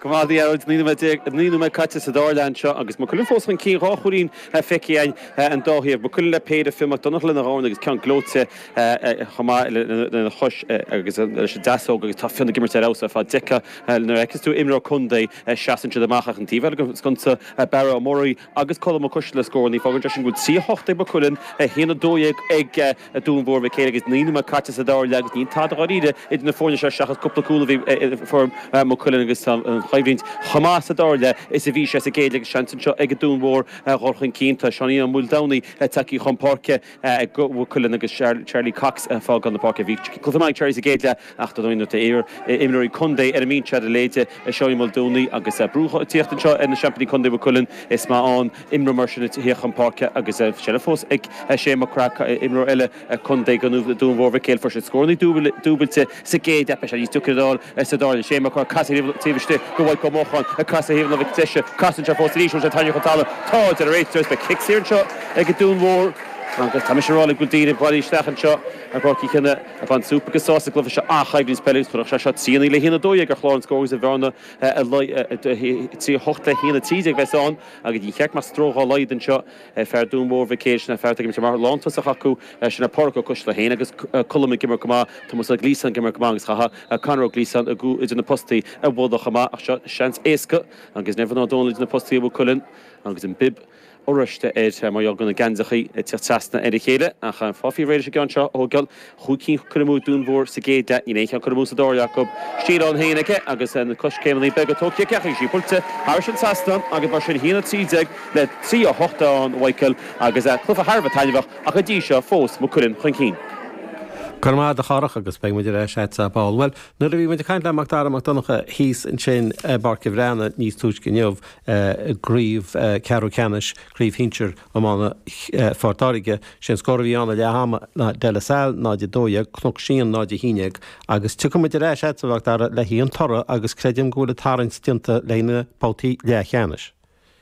Go raibh maith a'd Araild, naoi nóiméad déag, naoi nóiméad caite sa dara leath anseo agus Maigh Cuilinn fós chun cinn, dhá chúilín feicthe againn ón dá thaobh. Maigh Cuilinn le péire, Fionn Mac Donnacha lena dhorn agus ceann gleoite chomh maith lena chois agus leis an deasóg agus tá Fionn ag imirt ar fheabhas ar fad. Nuair a fheiceas tú imreoir contae seasann siad amach ach an taobh eile den sconsa, Barra Ó Muirí, agus Colm Ó Coistealla le scórannaí. Fágann sé sin go bhfuil 3-8 ag Maigh Cuilinn, 1-12 ag Dún Mhór Mhic Éil agus naoi nóiméad caite sa dara leath agus níl tada dháiríre idir na foirne seo seachas cúpla cúl a bhí ag foireann Mhaigh Cuilinn agus tá an choimhlint chomh maith sa dara leath is a bhí sé sa gcéad leath agus seans anseo ag Dún Mhór dhul chun cinn. Tá Seánie Ó Maoldomhnaigh tagtha chun páirce. Ag Maigh Cuilinn agus Charlie Cox ag fágáil na páirce. Bhí cluiche maith ag Charlie sa gcéad leath ach nuair atá iar-imreoirí contae ar an mbinse a'd, a leithéide Seán Ó Maoldomhnaigh agus brú ag tíocht anseo ar na seaimpíní contae Mhaigh Cuilinn. Is maith an imreoir mar sin a thíocht chun páirce agus seilbh fós ag Shane Mac Craith, imreoir eile contae Dún Mhór Mhic Éil. Fuair sé scórannaí dúbailte sa gcéad leath. Beidh sé níos deacra dó. sa dara leath. Shane Mac Craith ag casadh taobh istigh de Mhaidhc Ó Mocháin ag casadh ar thaobh na láimhe deise. Casann sé fós arís, bhfuil sé tarraingthe go talamh. Tá, a deir an réiteoir. Beidh cic saor anseo ag an Dún Mhór. Agus tá mise ag rá libh go bhfuil daoine ag bailiú isteach anseo go Páirc Uí Chionnaith ag baint súp agus sásamh as an gcluiche seo ach coimhlint spleodrach í seo trí a naoi le haon a dó dhéag ar chlár an scóir agus an bhearna trí a hocht le haon a trí déag a bheas ann agus níor cheart go mbeadh stró dhá laghad anseo. Ar fhear Dún Mhór Mhic Éil, sin é fear atá ag imirt mar lántosach acu, sin é Pádraig Ó Coistealbha féin agus Colm ag imirt go maith, Tomás Ó Gliasáin ag imirt go maith agus caithfear Conor Ó Gliasáin sa gcúl idir na postaí a mholadh chomh maith ach seo seans éasca agus Evan Ó Dónaill idir na postaí ag Maigh Cuilinn agus an bib oráiste air mar gheall go bhfuil na geansachaí ag tíocht trasna ar a chéile ach Pádraig réidh leis an gceann seo a thóigeáil. cúig cinn curtha amú ag Dún Mhór sa gcéad leath, níl aon cheann curtha amú sa dara leath acu. Stíl ann féin aige agus na coiscéimeanna beaga tógtha aige agus í buailte thairis an trasnán agus mar sin 1-13 le 3-8 a fhágann Mhichael agus cluiche thar a bheith taitneamhach ach go dtí seo fós Maigh Cuilinn chun cinn. Go raibh maith a'd a Chárthaigh agus beidh muid ar ais a'dsa ar ball. Bhuel, nuair a bhí muid ag caint le Mac Dara Mac Donncha thíos ansin i bPáirc a' Bhreathnaigh níos túisce inniu i gCraobh Ceathrú Ceannais, Craobh Shinsear, Iomána Phort Láirge, sé an scór a bhí ann ag leath ama ná De La Salle 0 12, Cnoc Síon 0 11 agus tiocfaidh muid ar ais a'dsa a Mhac Dara le haghaidh an toradh agus creidim go bhfuil an tarraingt déanta leis na babhtaí leathcheannais.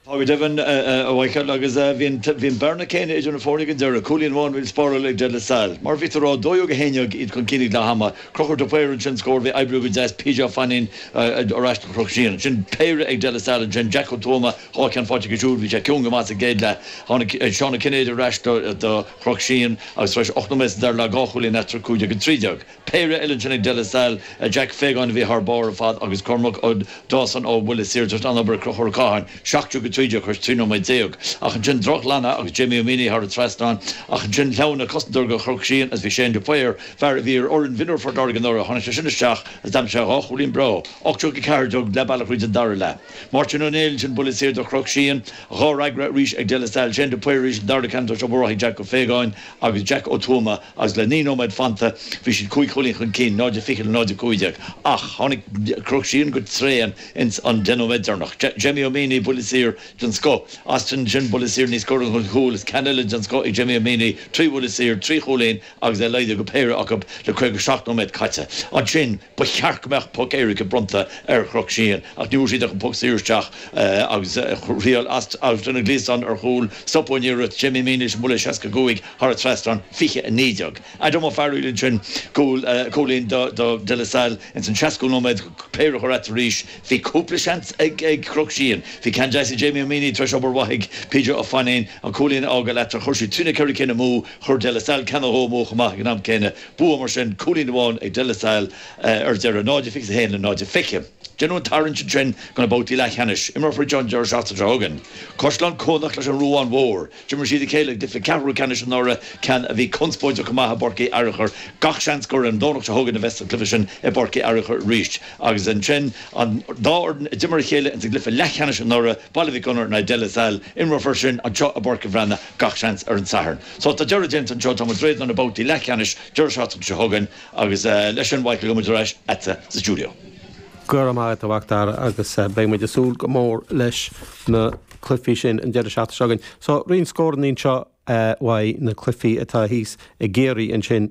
Tá go deimhin a Mhaidhcil agus bhí an bearna céanna idir na foirne ag an deireadh, cúilín amháin a bhí le spáráil ag De La Salle. Mar a bhí tú a rá, 12 a 11 iad chun cinn ag leath ama, Crochúr de Paor ansin an scór a bhí ag oibriú go deas, PJ Ó Fainín ar ais do Chnoc Síon, ansin péire ag De La Salle ansin, Jack Ó Tuama, Dhá cheann faighte aige siúd, bhí sé ciúin go maith sa gcéad leath. Seán Ó Cinnéide arís do Chnoc Síon agus tar éis ocht nóiméad sa dara leath, dhá chúilín eatarthu, 15-13. Péire eile ansin ag De La Salle, Jack Fagan a bhí thar barr ar fad agus Cormac Ó Dawson ó bhuille saor. Tar éis an-obair ag Conchúr Ó Catháin, 17-13 tar éis 13 nóiméad, ach ansin drochghlanadh agus Jamie Ó Maonaigh thar an trasnán, ach ansin shleamhnaigh cosantóir ó Chnoc Síon agus bhí Shane de Paor, fear a bhí ar fhoireann mhionúr Phort Láirge anuraidh, tháinig sé sin isteach agus d'aimsigh sé dhá chúilín breá, 18-14 leath bealaigh thríd an dara leath. Máirtín Ó Néill ansin buille saor do Chnoc Síon. Dhá fhreagra arís ag De La Salle. Shane de Paor arís an dara ceann tar éis obair mhaith ag Jack Ó Faogáin agus Jack Ó Tuama agus le naoi nóiméad fanta bhí siad cúig chúilín chun cinn, 0-20 le 0-15. Ach tháinig Cnoc Síon go tréan ins an deich nóiméad deireanach. Jamie Ó Maonaigh, buille saor den scoth Austin ansin buille saor os comhair an chúil is ceann eile den scoth ag Jamie Ó Maonaigh. Trí bhuille saor, trí chúilín. agus é laghdaithe go péire acu le 57 nóiméad caite. Ansin, ba cheart go mbeadh poc éirice bronnta ar Chnoc Síon ach fuair siad an poc saor isteach agus thriail Austin Ó Gliasáin ar chúl, stopadh an iarracht. Jamie Ó Maonaigh leis an mbuille 65 thar a trasnán, 20-19. Adam Ó Fearghail ansin cúilín do De La Salle ins an seascú nóiméad, péire a chur eatarthu arís. Bhí cúpla seans ag Cnoc Síon. Bhí ceann deas ag Jamie Ó Maonaigh tar éis obair mhaith ag PJ Ó Fainín an cúilín a fhágáil eatarthu, chuir siad trí nó ceithre cinn amú. Chuir De La Salle ceann nó dhó amú chomh maith ag an am céanna. Bua mar sin, cúilín amháin ag De La Salle ar deireadh, 0 a fiche is a haon le 0 a fiche. Déanadh an tarraingt ansin do na babhtaí leathcheannais. Imreofar iad an deireadh seachtaine seo chugainn. Caisleán Cuanach leis an Ruán Mhór. D'imir siad a chéile i gcluiche ceathrú ceannais anuraidh, ceann a bhí conspóideach go maith i bPáirc Uí Fhearachair. Gach seans gur ar an Domhnach seo chugainn a bheas an cluiche sin i bPáirc Uí Fhearachair arís. Agus ansin an dá fhoireann a d'imir a chéile ins an gcluiche leathcheannais anuraidh, Baile Mhic Gonair in aghaidh De La Salle. Imreofar sin anseo i bPáirc an Bhreathnaigh. gach seans ar an Satharn. So tá deireadh déanta anseo, tá muid réidh do na babhtaí leathcheannais deireadh seachtaine seo chugainn agus leis sin bhuel, beidh muid ar ais leatsa sa stiúideo. Go raibh maith agat, a Mhacdara, agus beidh muid ag súil go mór leis na cluifí sin an deireadh seachtaine seo chugainn. So roinnt scórannaí anseo uaidh na cluifí atá thíos i gCiarraí ansin.